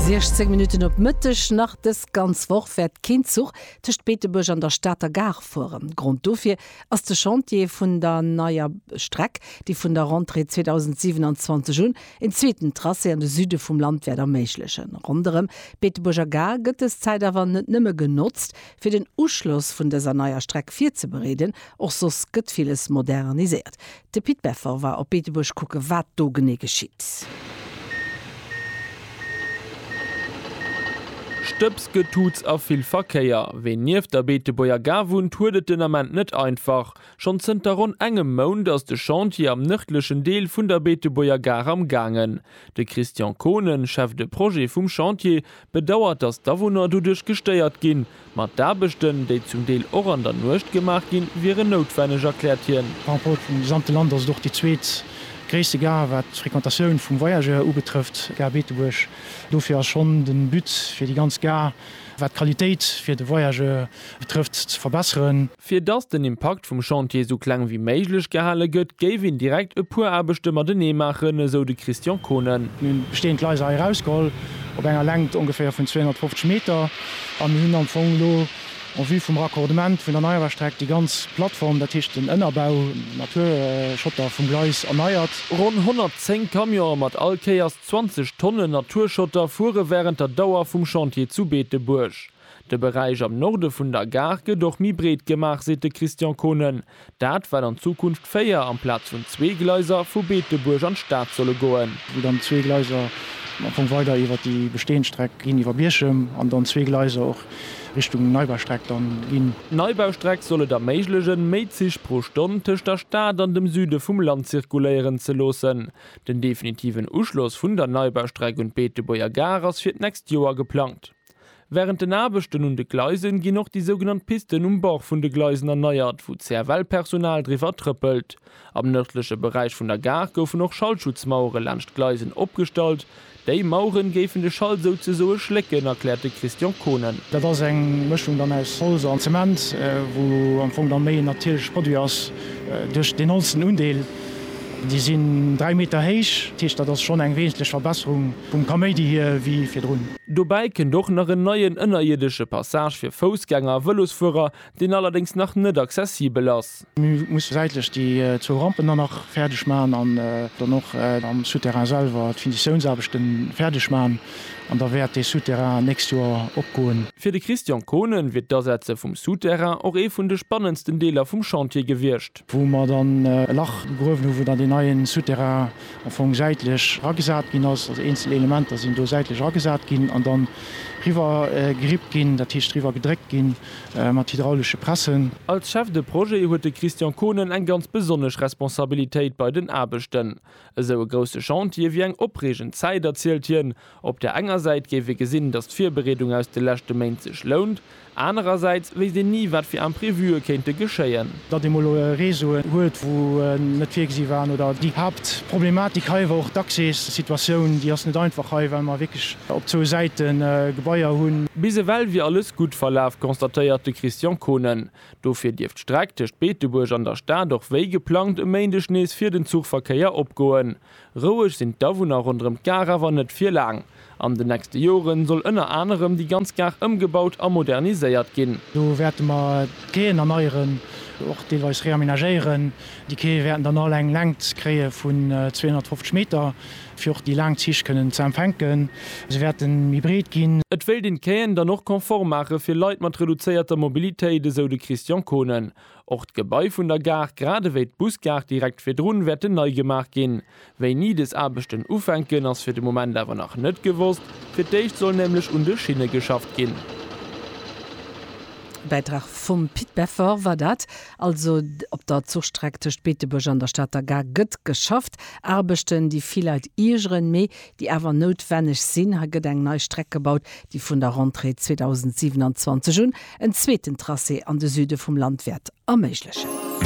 16 Minutten op Mëtteg. Nach dës ganz Woch wäert keen Zuch tëscht Beetebuerg an der Stater Gare fueren. Grond dofir ass de Chantier vun der neier Streck, déi vun der Rentrée 2027 un een zweeten Tracé an de Süde vum Land wäert erméiglechen. Ronderëm d'Beetebuerger Gare gëtt dës Zäit awer net nëmme genotzt, fir den Uschloss vun dëser neier Streck virzebereeden. Och soss gëtt villes moderniséiert. De Pit Beffer war op Beetebuerg kucken, wat do genee geschitt. Stëbs, Getutz a vill Verkéier. Ween nieft der Beetebuerger Gare wunnt, huet et den Ament net einfach. Schonn zënter ronn engem Mount ass de Chantier am nërdlechen Deel vun der Beetebuerger Gare am gaangen. De Christian Kohnen, Chef de Projet vum Chantier, bedauert, datt d'Awunner doduerch gestéiert ginn. Ma d'Aarbechten, déi zum Deel och an der Nuecht gemaach ginn, wieren noutwenneg, erkläert hien. Par rapport zum gesamte Land ass et och déi zweet gréisste Gare wat d'Frequentatioun vum Voyageur ubetrëfft, d'Gare Beetebuerg. Dofir ass schonn de But fir déi ganz Gare, wat d'Qualitéit fir de Voyageur betrëfft, ze verbesseren. Fir dass den Impakt vum Chantier esou kleng wéi méiglech gehale gëtt, géif een direkt e puer Aarbechte matenee maachen, esou de Christian Kohnen. Mir hunn d'besteeënd Gleiser hei erausgeholl, op enger Längt ongeféier vun 250 Meter, a mir hunn am Fong elo en vue vum Raccordement vun der Neiaarbechtstreck déi ganz Plattform, dat heescht den Ënnerbau, Naturschotter vum Gleis, erneiert. Ronn 110 Camionen mat all Kéiers 20 Tonnen Naturschotter fuere wärend der Dauer vum Chantier zu Beetebuerg. De Beräich am Norde vun der Gare gëtt och méi breet gemaach, seet de Christian Kohnen. Dat, well an Zukunft véier amplaz vun zwee Gleiser vu Beetebuerg an d'Stad solle goen. Wou dann zwee Gleiser am Fong weider iwwer déi bestehend Streck ginn, iwwer Bierchem, an dann zwee Gleiser och Richtung Neibaustreck dann ginn. D'Neibaustreck soll et erméiglechen, méi Zich pro Stonn tëscht der Stad an dem Süde vum Land zirkuléieren ze loossen. Den definitiven Uschloss vun der Neibaustreck un d'Beetebuerger Gare ass fir d'nächst Joer geplangt. Wärend den Aarbechten un de Gleisen ginn och déi sougenannt Pisten um Bord vun de Gleisen erneiert, wou d'CFL-Personal driwwer trëppelt. Am nërdleche Beräich vun der Gare goufen och Schallschutzmauere laanscht d'Gleisen opgestallt. Déi Maueren géifen de Schall souzesoe schlécken, erkläert de Christian Kohnen. Dat ass eng Mëschung dann aus Holz an Zement, wou am Fong dann méi en natierleche Produit ass duerch deen holzenen Undeel. Déi sinn dräi Meter héich, dat heescht dat ass schonn eng wesentlech Verbesserung vum Kaméidi hier wéi virdrun. Dobäi kënnt och nach en neien ënnerierdesche Passage fir Foussgänger a Vëlosfuerer, deen allerdéngs nach net accessibel ass. Mir musse säitlech déi zwou Rampen dann nach fäerdeg maachen an dann och am Souterrain selwer d'Finitiounsaarbechte fäerdeg maachen an da wäert dee Souterrain nächst Joer opgoen. Fir de Christian Kohnen wier d'Asetze vum Souterrain och ee vun de spannendsten Deeler vum Chantier gewiescht. wou mer dann e Lach gegruewen hu wou dann deen neien Souterrain am Fong säitlech eragesat ginn ass, also eenzel Elementer sinn do säitlech eragesat ginn an dann riwwer gerippt ginn, dat heescht riwwer gedréckt ginn mat hydraulesche Pressen. Als Chef de Projet huet de Christian Kohnen eng ganz besonnesch Responsabilitéit bei den Aarbechten. Esou e grousse Chantier wier eng opreegend Zäit, erzielt hien, Op der enger Säit géif ee gesinn, datt d'Virbereedung aus de leschte Méint sech lount, anerersäits wéisst een ni, wat fir Imprevue kéinte geschéien. Datt ee mol Réseauen huet, wou en net virgesi waren, oder déi Haaptproblematik hei war och d'Accès-Situatioun, déi ass net einfach hei, well mer wierklech op zwou Säite Gebaier hunn. Bis ewell wier alles gutt verlaf, constatéiert de Christian Kohnen. Dofir dierft d'Streck tëscht Beetebuerg an der Stad och wéi geplangt e Méindeg nees fir den Zuchverkéier opgoen. Roueg sinn d'Awunner ronderëm d'Gare awer net fir laang. An den nächste Joren soll ënner anerem déi ganz Gare ëmgebaut a moderniséiert ginn. Do wäerte mer d'Quaien erneieren, och deelweis reaménagéieren. Déi Quaie wäerten dann all eng Längt kréie vun 250 Meter, fir och déi laang Zich kënnen ze empfänken. Se wäerte méi breet ginn. Et wéilt een d'Quaien dann och confort maache fir Leit mat reduzéierter Mobilitéit, esou de Christian Kohnen. Och d'Gebai vun der Gare, grad ewéi d'Busgare direkt virdrun, wäerten nei gemaach ginn. Wéini des Aarbechten ufänken, ass fir de Moment awer nach net gewosst. Fir d'éischt soll nämlech un de Schinne geschafft ginn. Bäitrag vum Pit Beffort war dat. Also op der Zuchstreck tëscht Beetebuerg an der Stater Gare gëtt geschafft. Aarbechten, déi vill Leit iergeren, mee déi awer noutwenneg sinn. Hei gëtt eng nei Streck gebaut, déi vun der Rentrée 2027 un en zweeten Tracé an de Süde vum Land wäert erméiglechen.